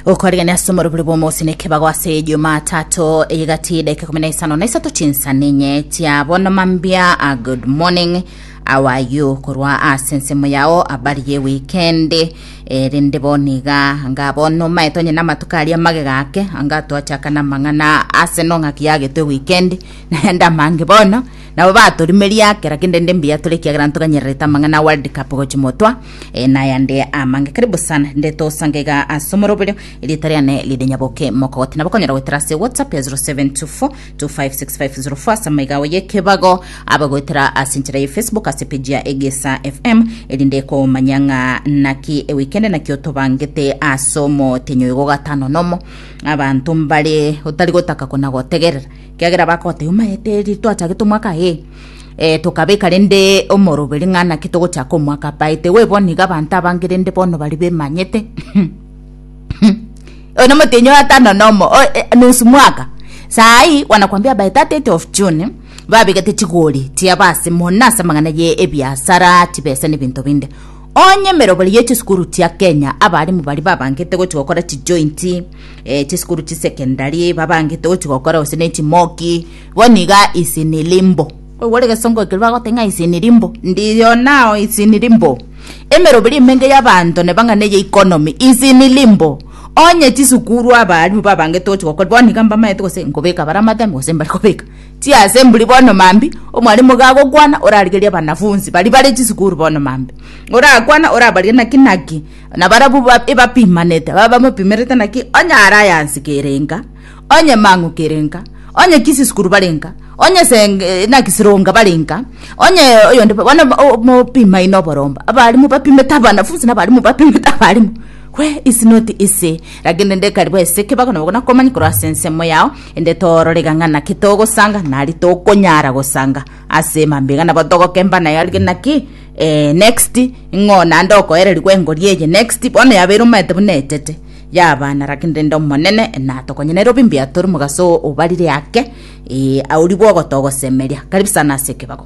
okorigania ase omorobori bw'omosini ekebago ase ejumatato eyegati dakika kumi na isano na isato chinsani enye chia bono mambia a good morning awa you korwa ase ensemo yao abari ye weekend erinde bono iga anga bono omaete onye na amatuko aria magega ake anga twachaka na amang'ana ase no ng'aki yagetwe weekend naende amange bono nabo batorimeria ake lakini rende mbuya tore ekiagera ntoganyererete amang'ana a world cup gochi motwa E, nayande amange kare busan ndetosangega ase omoroberio erieta riane ririnyaboke mokogoti nabo konyora goetera ase whatsapp ya 0724256504 ase amaigawo yekebago aba goetera ase enchera ye facebook ase peji ya egesa fm erinde komanya ng'a naki ewikende naki otobangete ase omotenyo igo gatano nomo abanto mbare otari gotaka kona gotegerera kiagera bakoteba maete eri twachagete omwaka ee eh, tokabeka rende omoroberi ng'a naki togochaka omwaka apaete we bono iga abanto abange rende bono bari bemanyete oyo nomotenyi oyo atano nomo o- e- nusu mwaka saai wanakwambia by 30 of june babegete chigori chiaba ase mona ase amang'ana ye ebiasara chibesa na ebinto binde onye emeroberi ye chisukuru chia kenya abarimu bari babangete gochi gokora chijointi eh, chisukuru chisecondary babangete gochi gokora gose ne chimoki Bo niga ise nere mbo. Oyo ore gesongo ekero bagote ng'a ise nere mbo. Ndiyo nao ise nere mbo. Emeroberi emenge y'abanto nebang'ane eye economy ise nere mbo. Onye chisukuru abaalimu babangete gochia gokora bono niga mbamaete gose nkobeka bare amateme gose mbare kobeka chiasemburi bono mambi omwalimu iga agokwana orarigerie abanafunsi baria bare chisukuru bono mambi orakwane orabarie naki naki nabarabwo ebapimanete babamopimerete naki onye are aya nse kerenga. Onye mang'okere nka, onye kisisukuru bare nka, onye se naki sironga bare nka, onye oyonde bono mopimaine oboromba, abarimu bapimete abanafunsi na abarimu bapimete abarimu we is not easy lakini rende ekari bwese ekebago nabo gona komanya korwa ase ensemo yao ende tororega ng'a naki togosanga nari tokonyara gosanga ase mambia iga nabo togokemba naye arige naki next ng'o naende okoererigwa engori eye next bono yabeire omanyete buna etete Yabana lakini rende Omonene enatokonyenere obi mbuya tore omogaso obarire ake, ee, aorigwe ogotogosemeria, karibu sana ase ekebago.